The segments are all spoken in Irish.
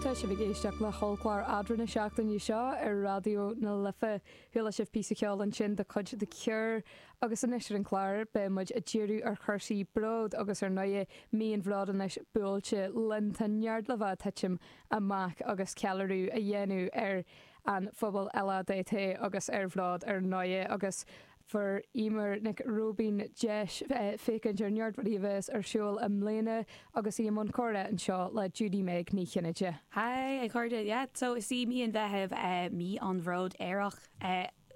Tá sibh ag éisteacht le hOllchlár Eadra na seachtaine seo ar Raidió na Life. Chuala sibh píosa ceoil ansin de chuid The Cure. Agus anois ar an chlár, beidh muid ag díriú ar chúrsaí bróid agus ar ndóighe, mí an Bhróid anois buailte linn. Tá neart le bheith titim amach agus ceiliúradh a dhéanamh ar an phobal LADT agus ar bhród ar ndóighe. Agus Fuair Eimear Nic Róibín deis féachaint ar neart rudaí a bheas ar siúl i mbliana agus í i mbun comhrá anseo le Judy-Meg Ní Chinnéide. Haigh a chairde, yeah so is í mí an Mheithimh mí an Bhróid Aerach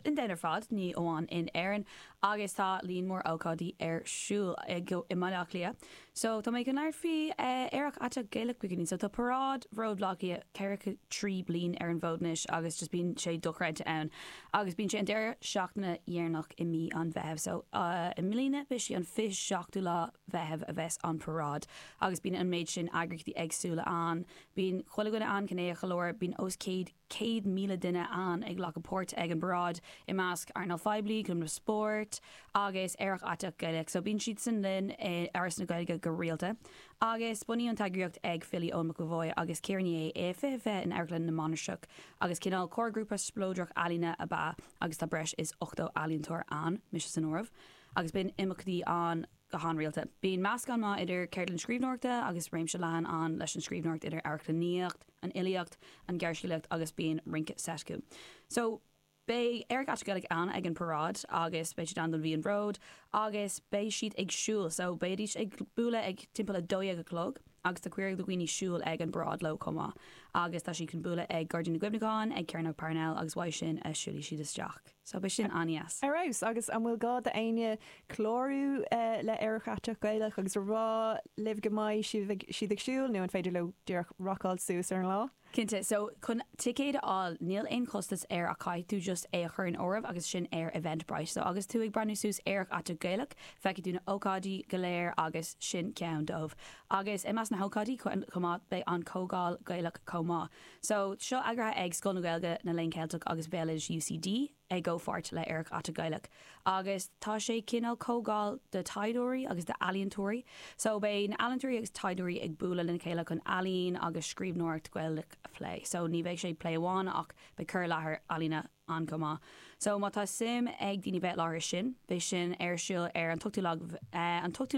in domhan ar fad, ní amháin in Éirinn, agus tá líon mór ócáidí ar siúl i mBaile Átha Cliath So tá mé ag labhairt faoi Aerach Aiteach Gaelach Beginning. So tá paráid Bhróid Bhaile Átha Cliath ceathracha trí bliain ar an bhfód anois agus just bíonn sé dochreidte ann agus bíonn sé an deireadh seachtaine dheireanach i mí an Mheithimh. So i mbliana beidh sí an 27ú lá Mheithimh a bheas an paráid agus bíonn an méid sin eagraíochtaí éagsúla ann. Bíonn chuile dhuine ann, gnéithe go leor. Bíonn os céad. 100,000 duine ann ag glacadh páirt ag an bparáid, i measc earnáil phoiblí, cumainn spóirt agus Aerach Aiteach Gaelach. So bíonn siad san linn i Áras na Gaeilge go rialta. Agus bunaíodh an t-eagraíocht ag filí Eoin McEvoy agus Ciara Ní É i 2020 in Amharclann na Mainistreach agus cineál comharghrúpa spleodrach ealaíne ab ea agus tá breis is 80 ealaíontóir ann, mise san áireamh, agus bíonn imeachtaí ann. go han-rialta. Bíonn meascán maith idir ceardlann scríbhneoireachta agus réimse leathan ann leis an scríbhneoireacht idir amharclannaíocht, an fhilíocht, an ghearrscéalaíocht agus bíonn rince seit acu. So, beidh Aerach Aiteach Gaelach ann ag an paráid agus beidh siad ann don Mhí an Bhróid agus beidh siad ag siúl so beidhidís ag bualadh ag timpeall a dó dhéag a chlog. agus tá cuireadh do dhaoine siúl ag an bparáid leo chomh maith agus tá siad chun bualadh ag Gairdín na gCuimhneachán, ag Cearnóg Parnell agus uaidh sin a siúlfaidh siad isteach. So beidh sin an-deas. Ar fheabhas! Agus an bhfuil gá do éinne clárú le Aerach Aiteach Gaelach agus a rá libh go mbeidh siad ag siúl nó an féidir leo díreach racáil suas ar an lá? Cinnte. So, chun ticéad a fháil, níl aon chostas air ach caithfidh tú just é a chur in áireamh agus sin ar Eventbrite. So, agus tú ag breathnú suas Aerach Aiteach Gaelach, feicfidh tú na ócáidí go léir agus sin ceann dóibh. Agus i measc na hócáidí chomh maith, beidh an Comhdháil Gaelach chomh maith. So, seo eagraithe ag Scoil na Gaeilge, na Léann Ceilteach agus Béaloidis UCD. i gcomhpháirt le Aerach Aiteach Gaelach agus tá sé cineál comhdháil do thaighdeoirí agus d'ealaíontóirí. So beidh na ealaíontóirí agus taighdeoirí ag bualadh lena chéile chun ealaín agus scríbhneoireacht Gaelach a phlé. So ní bheidh sé plé amháin ach beidh cur i láthair ealaíne ann chomh maith. So má tá suim ag daoine bheith i láthair ar sin, beidh sin ar siúl ar an t-ochtú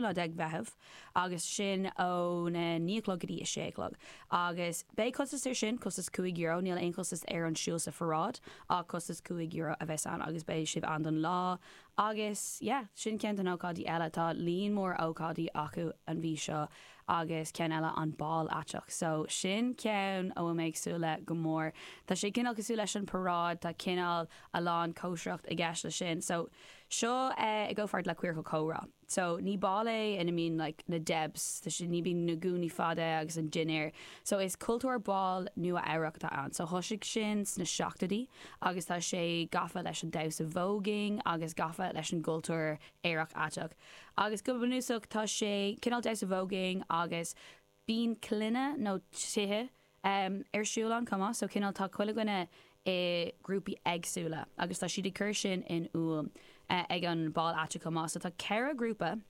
lá déag Mheitheamh. agus sin óna naon a chlog go dtí a sé a chlog. Agus beidh costas ar sin, costas cúig euro, níl aon chostas ar an siúl sa pharáid, ach costas cúig euro a bheas ann, agus beidh sibh ann don lá. Agus yeah, sin ceann de na ócáidí eile, tá líon mór ócáidí acu an mhí seo, agus ceann eile an Bál Aiteach. So sin ceann a bhfuil mé ag súil le go mór. Tá sé cineál cosúil leis an paráid, tá cineál a lán cóisireachta i gceist le sin. So seo i gcomhpháirt le Queercal Comhrá. So, ní ball é ina mbíonn like na debs, ní bíonn na gúnaí fada agus an dinnéar. So, is cultúr ball Nua-Eabhrac atá ann. So, thoisigh sin sna seachtóidí agus tá sé gafa leis an damhsa voguing agus gafa leis an gcultúr aerach aiteach. Agus go bunúsach tá sé cineál damhsa voguing agus. bíonn clanna nó tithe ar siúl ann chomh maith, so cineál tá chuile dhuine i grúpaí éagsúla agus tá siad ag cur sin in iúl ag an ball aiteach chomh maith. So tá ceithre ghrúpa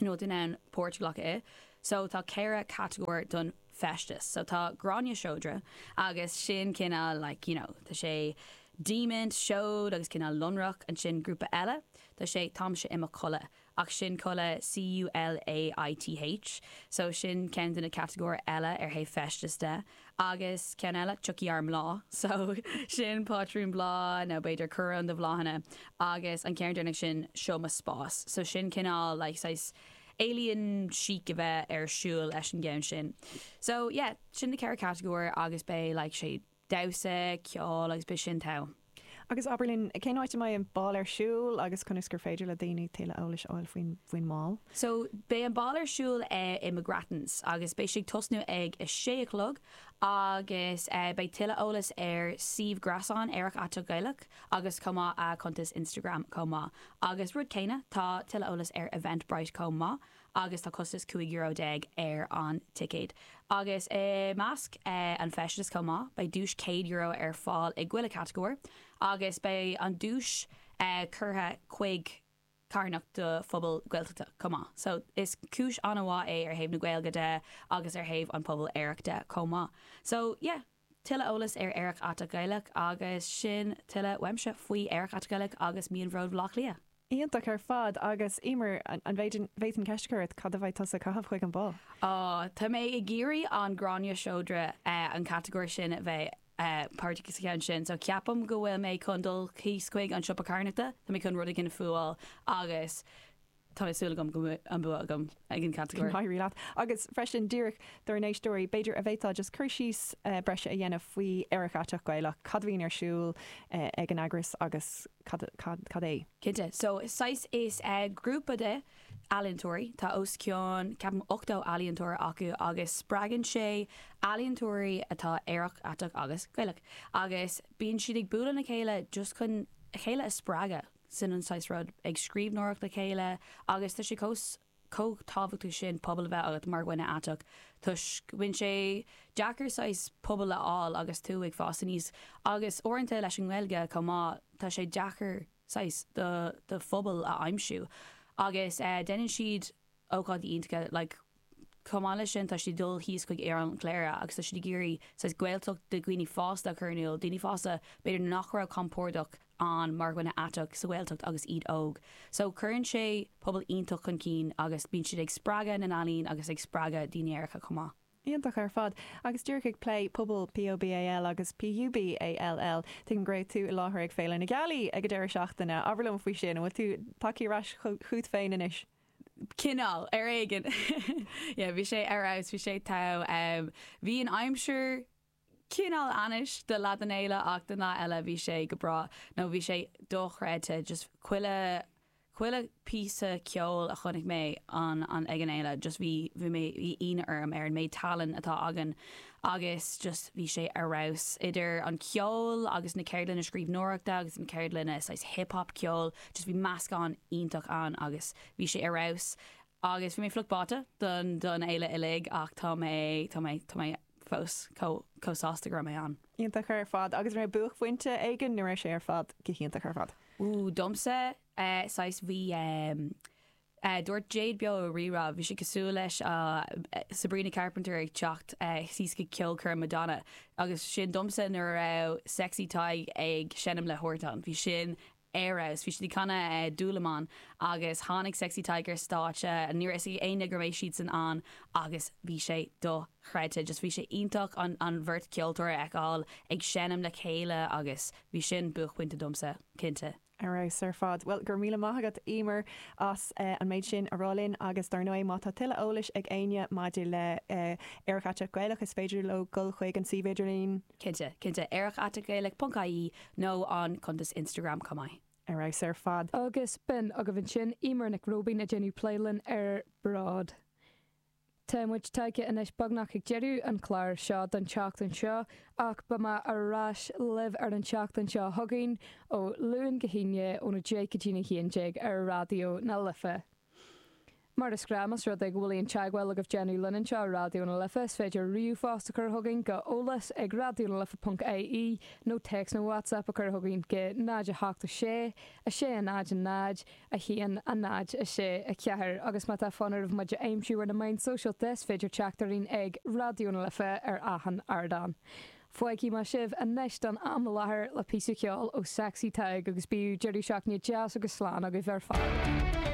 in ann páirt a ghlacadh, so tá ceithre catagóir don feisteas, so tá gráinne seodra agus sin cineál like you know tá sé diamaint, seod agus cineál lonrach, ansin grúpa eile tá sé táimse i mo chodladh Ach sin culaith, C-U-L-A-I-T-H, so sin ceann de na catagóir eile ó thaobh feistis de. Agus ceann eile, tiocfaidh ár mbláth, so sin pátrún bláth nó b'fhéidir coróin de bhláthanna. Agus an ceann deireanach sin, seo mo spás, so sin cineál like saghas alien chic a bheith ar siúl leis an gceann sin. So yeah, sin na ceithre catagóir agus beidh like sé damhsa, ceol agus bí sin tall. Agus abair linn, cén áit a mbeidh an bál ar siúl agus conas gur féidir le daoine tuilleadh eolais a fháil faoin mbál? So, beidh an bál ar siúl i McGrattans agus beidh sé ag tosnú ag a sé a chlog agus beidh tuilleadh eolas ar suíomh gréasáin Aerach Aiteach Gaelach agus chomh maith a cuntas Instagram chomh maith. Agus rud céanna, tá tuilleadh eolas ar Eventbrite chomh maith. agus tá costas cúig euro déag ar an ticéad. Agus i measc an faisin chomh maith beidh duais céad euro ar fáil i chuile chatagóir, agus beidh an duais curtha chuig carthanacht do phobail Gaeltachta chomh maith. So is cúis an-mhaith é ó thaobh na Gaeilge de agus ó thaobh an pobal aerach de chomh maith. So yeah. Tuilleadh eolais ar Aerach Aiteach Gaelach agus sin tuilleadh uaimse faoi Aerach Aiteach Gaelach agus Mí an Bhróid Bleá Cliath. Iontach ar fad agus Eimear an bhféadfainn ceist a chur ort, cad a bheidh tusa ag caitheamh chuig an bál? Aww tá mé ag iarraidh an gráinne seodra an catagóir sin a bheith páirteach sa cheann sin so ceapaim go bhfuil mé chun dul thíos chuig an siopa carthanachta tá mé chun rud éigin a fhuáil agus Tá súil agam go mbeidh an bua agam ag an catagóir. Éirí leat. Agus freisin, díreach dár n-éisteoirí, b'fhéidir an bhféadfá just cur síos breise a dhéanamh faoi Aerach Aiteach Gaelach, cad a bhíonn ar siúl ag an eagras agus cad é? Cinnte. So saghas, is grúpa de ealaíontóirí, tá os cionn ceapaim 80 ealaíontóir acu agus spreagann sé ealaíontóirí atá aerach, aiteach agus Gaelach agus bíonn siad ag bualadh le chéile just chun a chéile a spreagadh. sin an saghas rud, ag scríbhneoireacht le chéile, agus tá sé chomh tábhachtach sin pobal a bheith agat mar dhuine aiteach, toisc bíonn sé deacair saghas pobal a fháil agus tú ag fás aníos, agus uaireanta leis an nGaeilge chomh maith, tá sé deacair saghas do phobal a aimsiú, agus déanann siad ócáidí iontacha like Chomh maith leis sin, tá siad ag dul thíos chuig Oileán Chléire agus tá siad ag iarraidh saghas Gaeltacht do dhaoine fásta a chur in iúl, daoine fásta b'fhéidir nach raibh compordach ann mar dhuine aiteach sa Ghaeltacht agus iad óg. So cuireann sé pobal iontach chun cinn agus bíonn siad ag spreagadh na n-ealaíon agus ag spreagadh daoine aeracha chomh maith. Iontach ar fad! Agus díreach ag plé pobal POBAL agus PUBALL, tuigim go raibh tú i láthair ag Féile na Gealaí ag an deireadh seachtaine. Abair liom faoi sin, an bhfuil tú tagtha ar ais chugat féin anois? Cineál, ar éigean. Yeah, bhí sé ar fheabhas, bhí sé togha. Bhí an aimsir Cineál ainnis do leath den fhéile ach don leath eile bhí sé go breá nó bhí sé dochreidte just chuile chuile píosa ceoil a chonaic mé an an ag an fhéile just bhí bhí mé bhí ionadh orm ar an méid tallainn atá againn agus just bhí sé ar fheabhas idir an ceol agus na ceardlanna scríbhneoireachta agus na ceardlanna saghas hip hop ceol just bhí meascán iontach ann agus bhí sé ar fheabhas agus bhí mé fliuch báite don don fhéile uilig ach tá mé tá mé tá mé fós chomh sásta go raibh mé ann. Iontach ar fad. Agus an raibh buaicphointe éigin nó raibh sé ar fad go hiontach ar fad? Ooh, domsa, saghas bhí, dúirt Jade beo ar Rí-Rá, bhí sé cosúil leis Sabrina Carpenter ag teacht síos go ceolchoirm Madonna, agus sin domsa nuair a raibh Sexy Tadhg ag seinm le Huartan, bhí sin ar fheabhas. Bhí siad ag canadh Dúlamán agus tháinig Sexy Tadhg ar stáitse. Ní raibh fhios ag éinne go mbeadh siadsan ann agus bhí sé dochreidte. Just bhí sé iontach an an bheirt ceoltóir a fheiceáil ag seinm le chéile agus bhí sin buaicphointe domsa, cinnte. Ar fheabhas ar fad. Bhuel, go raibh míle maith agat, Emer, as an méid sin a roinnt linn agus dar ndóigh, má tá tuilleadh eolais ag éinne maidir le Aerach Aiteach Gaelach, is féidir leo dul chuig an suíomh idirlín. Cinnte, cinnte. Aerach ait ag gaelic ponc ie nó an cuntas Instagram chomh maith. Ar fheabhas ar fad. Agus b'in agaibh ansin Eimear Nic Róibín ag déanamh plé linn ar Bród. Tá muid tagtha anois beagnach ag deireadh an chláir seo don tseachtain seo ach beidh mé ar ais libh ar an tseachtain seo chugainn ó Luan go hAoine ón 10 go dtí'n 11 ar Raidió na Life. Mar is gnách más rud é go bhfuil aon teagmháil agaibh le déanamh linn anseo ar Raidió na Life, is féidir ríomhphost a chur chugainn go eolas ag raidiónalife.ie nó téacs nó WhatsApp a chur chugainn go 0 8 6 6 0 0 1 0 6 4 agus má tá fonn oraibh muid a aimsiú ar na meáin sóisialta is féidir teacht orainn ag Raidió na Life ar achan ardán. Fágfaidh mé sibh anois don am i láthair le píosa ceoil ó Sexy Tadhg agus bíodh deireadh seachtaine deas agus slán agaibh ar fad.